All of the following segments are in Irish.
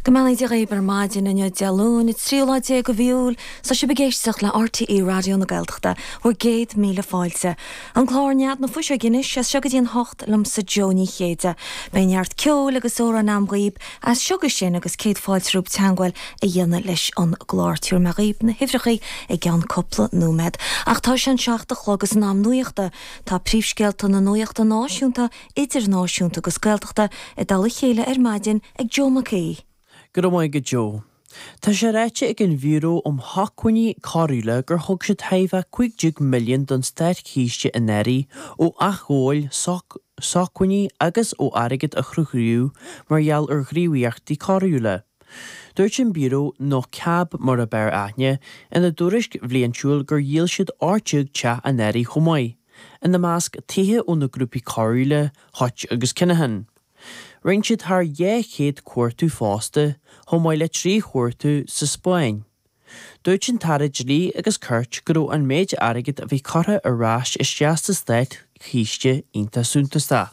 Go mbeannaí Dia dhaoib ar maidin inniu Dé Luain an tríú lá déag de mhí Iúil 's tá sibh ag éisteacht le RTÉ Raidió na Gaeltachta, bhur gcéad míle fáilte. An clár Nead na Fuiseoige anois as seo go dtí an hocht liomsa Jó Ní Chéide. Beidh neart ceoil agus amhráin a'm dhaoib as seo go sin agus céad fáilte roimh teangmháil a dhéanamh leis an gclár. Tiúrfaidh mé dhaoib na huimhreachaí i gceann cúpla nóiméad. Ach tá sé an seacht a chlog is in am nuachta. Tá príomhscéalta na nuachta náisiúnta idirnáisiúnta agus Gaeltachta i dtoll a chéile ar maidin ag Joe Mac Aoidh. Go raibh maith agat Joe. Tá sé ráite ag an Bhiúró um Shócmhainní Coiriúla gur thug siad chóir a bheith cúig déag milliún don Státchiste anuraidh ó athghabháil sócmhainní agus ó airgead a chruthaíodh mar gheall ar ghníomhaíochtaí coiriúla. Dúirt an Biúró nó CAB mar ab fhearr aithne ina dtuairisc bhliaintiúil gur dhíol siad ocht déag teach anuraidh chomh maith. ina measc tithe ó na grúpaí coiriúla Hutch agus Kinahan. Rinne siad thar dhá chéad cuartú fosta, chomh maith le trí chuartú sa Spáinn. Dúirt an tAire Dlí agus Cirt go raibh an méid airgid a bhí curtha ar ais isteach sa Státchiste iontach suntasach.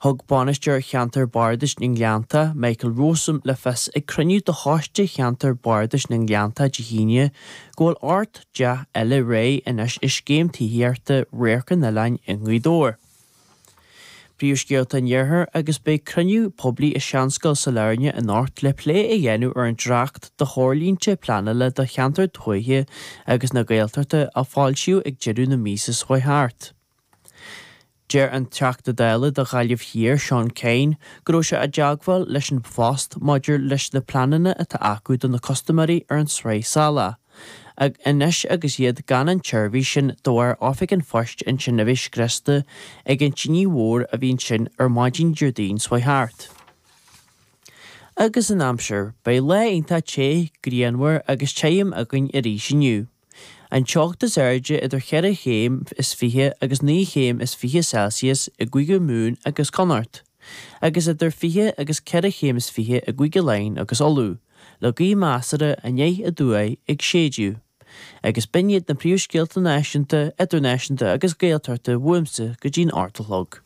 Thug Bainisteoir Cheantar Bardais na nGleannta, Michael Rowsome, le fios ag cruinniú de Choiste Cheantar Bardais na nGleannta Dé hAoine go bhfuil ocht dteach eile réidh anois i Scéim Tithíochta Radharc an Oileáin i nGaoth Dobhair. Príomhscéalta an Iarthair agus beidh cruinniú poiblí i Seanscoil Sailearna anocht le plé a dhéanamh ar an Dréacht do Threoirlínte Pleanála do Cheantar Tuaithe agus na Gaeltachta a foilsíodh ag deireadh na míosa seo thart. Deir an Teachta Dála do Ghaillimh Thiar Seán Kyne go raibh sé i dteagmháil leis an bPost maidir leis na pleananna atá acu do na custaiméirí ar an tSraith Salach anois agus iad gan an tseirbhís sin de bharr Oifig an Phoist ansin a bheith scriosta ag an tine mhór a bhí ansin ar maidin Déardaoin seo thart. Agus an aimsir, beidh lá iontach te, grianmhar agus tirim againn arís inniu. An teocht is airde idir cheithre chéim is fiche agus naoi chéim is fiche Celsius i gCúige Mumhan agus Connacht, agus idir fiche agus ceithre chéim is fiche i gCúige Laighean agus Uladh, le gaoth measartha anoir aduaidh ag séideadh. Agus b'in iad na príomhscéalta náisiúnta, idirnáisiúnta agus Gaeltachta uaimse go dtí'n hocht a chlog.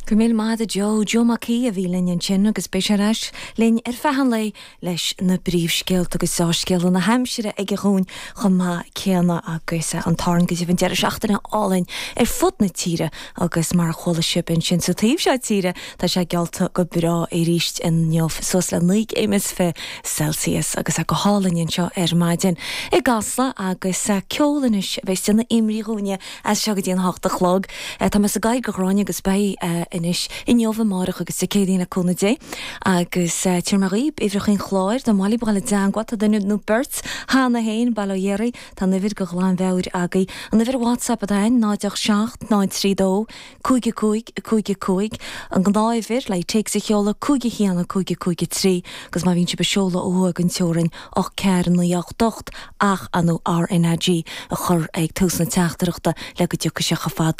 Go raibh míle maith a'd Joe Joe Mac Aoidh a bhí linn ansin agus beidh sé ar ais linn ar feadh an lae leis na bpríomhscéalta agus dea-scéala na haimsire aige dhúinn chomh maith céanna agus an Táin go deimhin deireadh seachtaine álainn ar fud na tíre agus mar a chuala sibh ansin sa taobh seo tíre tá sé geallta go breá arís inniu suas le naoi gcéim is fiche Celsius agus é go hálainn anseo ar maidin i gCasla agus ceol anois a bheidh déanamh imrí dhúinne as seo go dtí an hocht a chlog. Tá mé sa gcathair go Gráinne agus beidh anois, inniu, amárach agus Dé Céadaoin le cúnamh Dé. Agus téann mé dhaoib uimhreacha an chláir, dá mba mhaith libh a bheith i dteagmháil, tá duine nó beirt cheana féin, bail ó Dhia oraibh, tá an uimhir de ghlanmheabhair agaibh. An uimhir WhatsApp atá ann, 0 8 7 0 3 2 cúig a cúig a cúig a cúig, an gnáth-uimhir le téacs a sheoladh cúig a haon a cúig a cúig a trí agus má bhíonn sibh ag seoladh ó thuaidh den teorainn ocht ceathair a naoi a ocht ocht ach ar ndóigh RnaG a chur ag tús na teachtaireachta le go dtiocfaidh sé chomh fada